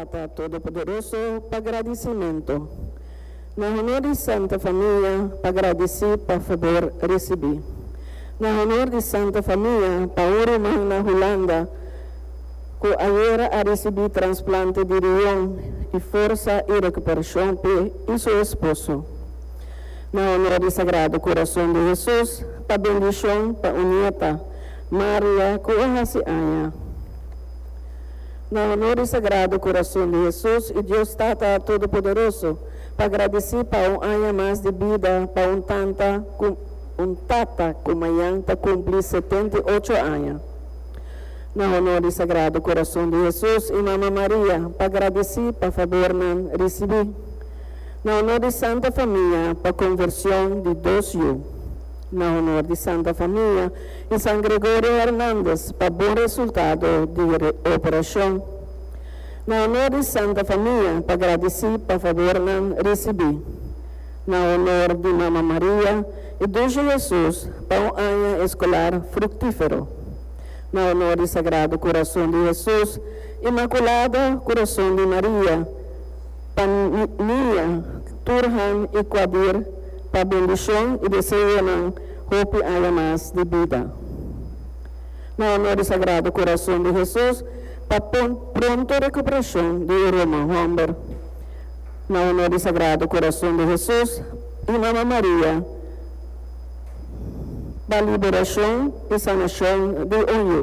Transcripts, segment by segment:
Tata Todopoderoso pa gradisimentu. Na honor di Santa Famia pa gradisí pa fabor risibí. Na honor di Santa Famia pa un ruman na Hulanda ku ayera a risibí transplante di rion i forsa i rekuperashon p'e i su esposo. Na honor di Sagrado Kurason di Hesus pa bendishon pa un nieta, Maria, ku a hasi aña. na honor di Sagrado Corazon di Hesus y Dios Tata Todopoderoso, pa gradici pa un aña mas di bida pa un tanta cu un tata cu mayan ta cumpli setenta y ocho aña. Na honor di Sagrado Corazon di Hesus y Mama Maria, pa gradici pa fabornan ricibi. Na honor di Santa Famia, pa conversion di dos yu. Na honor di Santa Famia y San Gregorio Hernandez pa bon resultado di operacion. Na honor di Santa Famia pa gradici pa favor nan ricibi. Na honor di Mama Maria y Dulce Jesus pa un aña escolar fructifero. Na honor di Sagrado Corazon di Jesus, Inmaculado Corazon di Maria, pa Niña, Turhan i Quadir pa bendishon i deseonan hopi aña mas di bida. Na honor di Sagrado Corazon di Hesus pa pronto recuperashon di e Roma homber. Na honor di Sagrado Corazon di Hesus i Mama Maria pa liberashon i sanashon di un yu.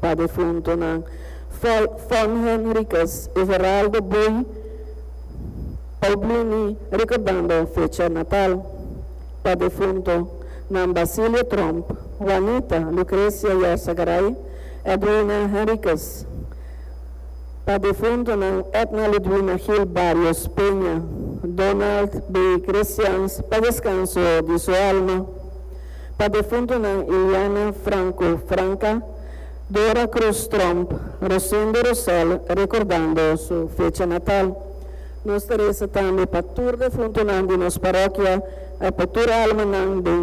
pa defuntonan, Fol Von Henricus y Geraldo Boei Paublini recordando fecha natal pa defunto nan Basilio Tromp, Juanita Lucrecia Yorsa Garay, Edwina Henricus pa defuntonan Edna Ludwina Gil Barrios Peña, Donald Boei Cresians pa descanso di su alma. Pa defuntunan Iliana Franco Franca, Dora Cruz Tromp, Rosendo Rosell rekordando su fecha natal. Nos ta resa tambe pa tur defuntunan di nos parokia e pa tur almanan den